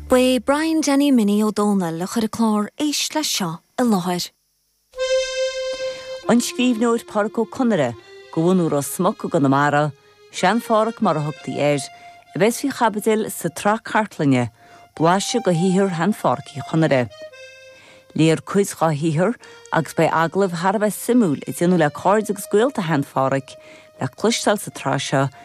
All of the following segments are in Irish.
Ba é Brian Danny Minnie Ó Dónaill a chuir an clár Éist Leis Seo i láthair. An scríbhneoir Pádraic Ó Conaire, de bhunadh Ros Muc i gConamara, Sean-Phádraic mar a thugtaí air, a bheas faoi chaibidil sa tsraith cartlainne, Blaiseadh de shaothar Shean-Phádraic Uí Chonaire. Léifear cuid dá shaothar agus beidh agallaimh thar a bheith suimiúil a déanadh le cairde agus gaolta Shean-Phádraic le cloisteáil sa tsraith seo,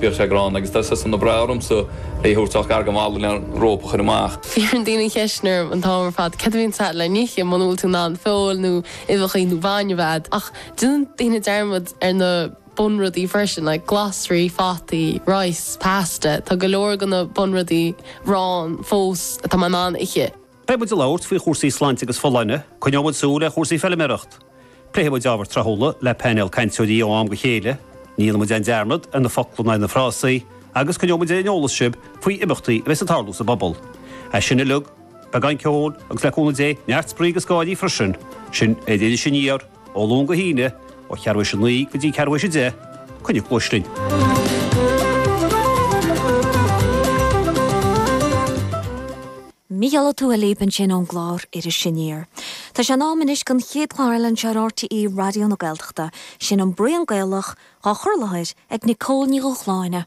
Bhíodh sé gránna agus tá sé sin an-bhreá orm is é a thabhairt ach gar go mall le an róp a chur amach. Iarrann daoine ceisteanna orm an t-am ar fad cad a bhíonn agat le n-ithe muna bhfuil tú in ann feoil nó uibheacha nó bainne a bheith agat. Ach déanann daoine dearmad ar na bunrudaí freisin like glasraí, fataí, rice, pasta, tá go leor go na bunrudaí, arán, fós atá mé in ann a ithe. Beidh muid ag labhairt faoi chúrsaí sláinte agus folláine, coinneoidh muid súil ar chúrsaí feilméarachta, pléifidh muid ábhair thráthúla le painéal cainteoirí ó am go chéile, ní dhéanfaidh muid aon dearmad ar na focla ná ar na frásaí, agus coinneoidh muid ar an eolas sibh faoi imeachtaí a bheas ag tarlú sa bpobal. Anuas air sin uilig, beagán ceoil agus le cúnamh Dé, neart spraoi agus gáirí freisin. Sin é d'Iris Aniar, ó Luan go hAoine, ó cheathrú tar éis a naoi go dtí ceathrú tar éis a deich. Coinnigí cluais linn. Mícheál Ó Tuathail libh ansin ón gclár Iris Aniar. Tá sé in am anois don chéad chlár eile anseo ar RTÉ Raidió na Gaeltachta, sin An Braon Gaelach, dhá chur i láthair ag Nicole Ní Dhúshláine.